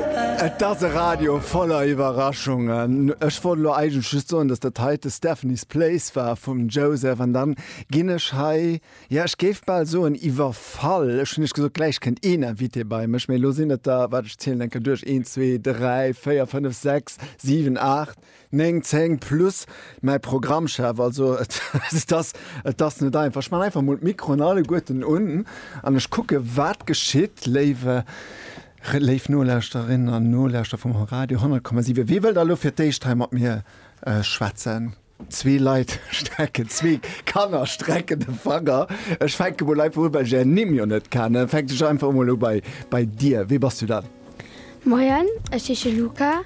Et ass e Radio voller Iwwerraschungen. Ech wollt elo eigentlech just soen, dass dat heite Stephanie's Place war vum Joseph an dann ginn ech hei, ja ech géif bal soen iwwerfall. Ech hunn Iech gesot, gläich kënnt een Invité bei mech, mee elo sinn et der, wat, ech zielen eng Kéier duerch, een, zwee, dräi, véier, fënnef, sechs, siwen, aacht, Néng, zéng plus mäi Programmchef. Also et ass, et ass net einfach. Ech man einfach mol d'Mikroen alleguerten un an ech kucke wat geschitt. Léiwe, léif Nolauschterinnen an Nolauschterer vum Radio 10,7, wee wëll da lo fir d'éischt hei mat mir schwätzen? Zwee Leit strecken, zwee Kanner strecken de Fanger. Ech fänke mol einfach u well ech ären Nimm jo net kennen. Fänke ech einfach emol u bei, bei dir. Wee bass du dann? Moien, ech heesche Luca,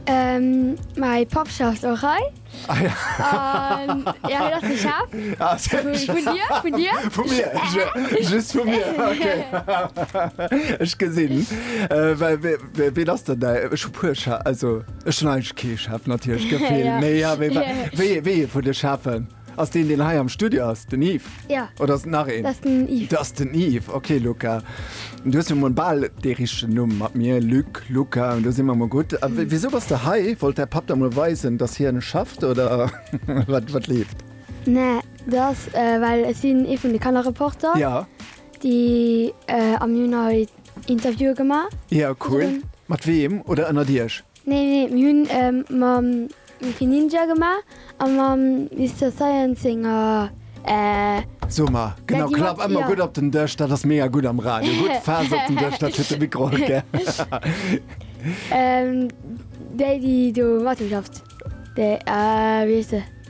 mäi Papp schafft och hei. Ah jo. An jo, hien ass de Chef. Ah seriö? Vun dir, vun dir. Vu mir? Just vu mir, okay. Ech gesinn. Well wee, ween ass dann däi, ech hu puer Chef, also ech hunn eigentlech kee Chef natierlech, gell Phil? Mee jo, wéi, wéi ee vun de Chefen? Ass deen deen hei am Studio ass den Yves? Ja. Oder ass et nach een? Dat ass den Yves. Dat ass den Yves, ok Luca. Du hues jo mol bal dee richtegen Numm mat mir, Luc, Luca, do si mer mol gutt. A wisou bass de hei? Wollt däi Papp der mol weisen, datt hien schafft oder wat leeft? Nee, dat ass well ech sinn ee vun de Kannerreporter. Ja. Déi am Juni hei Interviewe gemaach. Ja cool. Mat weem oder ënnert Iech? Nee, nee, mir hunn e mam Mickey Ninja gemaach a mam Mister Science senger. So mar, genau, klapp ëmmer gutt op den Dësch, dat ass mega gutt am Radio. Gutt fest op den Dësch, dat huet de Mikro och gär. Déi, déi do matgeschafft, déi, wéi heescht se?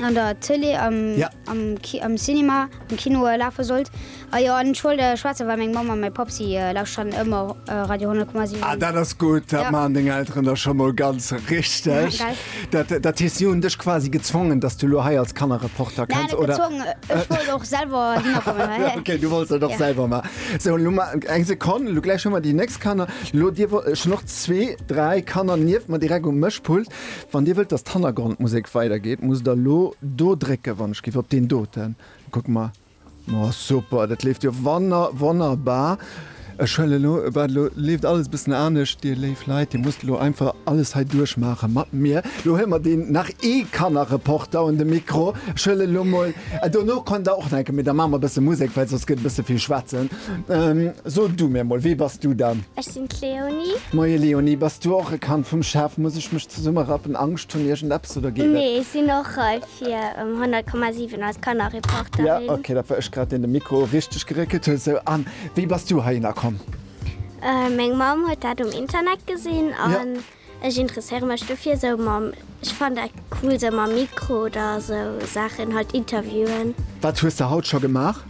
an der Tele am, ja. am, Ki am Cinema am Kino äh, lafe sollt. A ah, jo an Schoul äh, Schweze war meng Mam an mei Pap si äh, laus schon ëmmer äh, Radio 10,7. Ah, dat ass gut, dat ja. man deng Elteren der schon mal ganz richtig. Ja, dat, äh, dat hies Joen dech quasi gezwongen, dass du lo hei als Kannerreporter kannst. Nein, oder? gezwongen, äh, ech wollt och selber ja, Okay, du wolltest doch ja. selber ma. So, lo ma eng Sekunde, lo gleich schon mal die nächst Kanner. Lo dir schon noch zwee, drei Kanner nieft man direkt um Mëschpult. Wann dir wëllt dass d'Hannergrondmusek weider geet musst der lo do drécken, wann ech giff op deen doten kucken ma ma super dat leeft jo wanner wonnerbar ech huelen lo wat lo leeft alles bëssen anescht dir léif Leit dir musst lo einfach alles hei duerch maache mat mir lo huele mer deen nach ee Kannerreporter un de Mikro ech huele lo mol an dono kommt der och nach eng Kéier mee da maache mer bësse Musek well soss gëtt e bësse vill schwätzen. So du mir mol, wee bass du dann? Ech sinn d'Léonie. Moie Léonie, bass du och e Kand vum Chef? Muss ech mech zesummerappen, Angscht hunn, iergend eppes oder geet et? Nee, ech sinn och hei fir um 100,7 als Kannerreporterin. Ja, ok, dat war ech grad, deen de Mikro richteg geréckelt huet. Sou, an wéi bass du heihinner komm? Meng Mamm huet dat um Internet gesinn an Ech interesséiere mech dofir esou mam, ech fannen dat cool, esou mam Mikro oder esou Saachen, halt Interviewen. Wat hues de haut scho gemaach?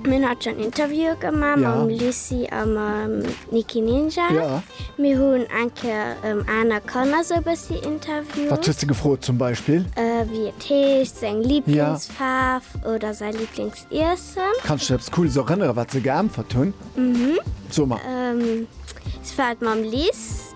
Mir hunn haut schonn Interviewe gemaach mam Lucy a mam Niki Ninja. Mir hunn eng Kéier aner Kanner esou e bëssi interviewt. Wat hues de gefrot zum Beispill? Wéi et heescht, seng Liblingsfaarf oder säi Liblings. iessen. Kanns dech eppes Cooles erënneren, wat se geäntwert hunn? Mhm. So emol. Et war d'Mamm Lis,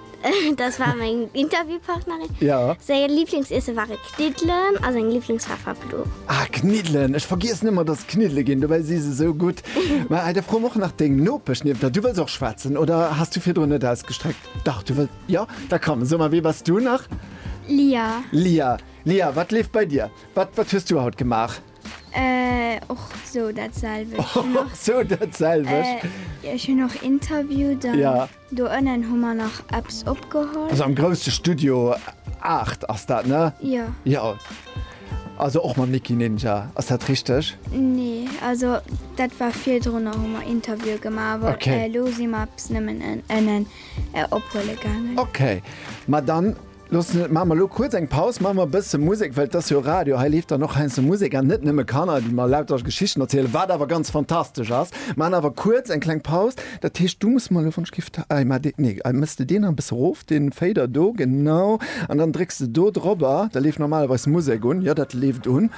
dat war meng Interviewpartnerin. Ja. Säi Liblingsiessen ware Kniddelen a seng Liblingsfaarf war blo. Ah, Kniddelen! Ech vergiessen ëmmer, dass et Kniddele ginn, dobäi si se sou gutt. Mä hei, da froe mer och nach deng Nopesch nieft der. Du wëlls och schwätzen oder has du virdrun net ausgestreckt? Dach, du wëlls. Jo, da komm. So emol, wee bass du nach? Lia. Lia, Lia, wat leeft bei dir? Wat, wat hues du haut gemaach? Och sou dat selwecht. Och sou dat selwecht. Ech hunn och interviewt an do ënnen hu mer nach eppes opgeholl. Also am grousse Studio 8 ass dat, ne? Jo. Jo. Also och mam Nicky Ninja, ass dat richteg? Nee, also dat war virdrunner hu mer Interviewe gemaach, awer elo si mer eppes nëmmen ënnen ophuele gaangen. Okay, ma dann. Looss net, maache mer elo kuerz eng Paus, maache mer e bësse Musek, well et ass jo Radio, hei leeft dann och heiansdo Musek an net nëmme Kanner, déi mer lauter Geschichten erzielen, wat awer ganz fantastesch ass. Mir maachen awer kuerz eng kleng Paus. Dat heescht, du muss mer elo, wann ech giff, hei mar dee, nee, hei méchs de deen nach e bësse erof, den Fader do, genau, an dann drécks de do drobber, da leeft normalerweis Musek un, jo, dat leeft un.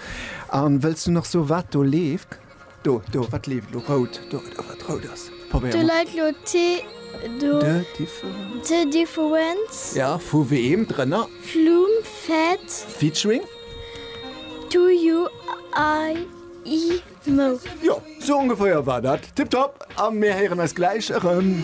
An wëlls du nach soen, wat do leeft? Do, do, wat leeft elo? Rout, do, do, wat rout ass. Probéier Do mol. läit lo T do. De differen. T difference. Ja, vu weem? Drënner? Flumm fett. Featuring? Do you I i mo. Jo, sou ongeféier war dat. Tipptopp! A mir héieren eis gläich erëm.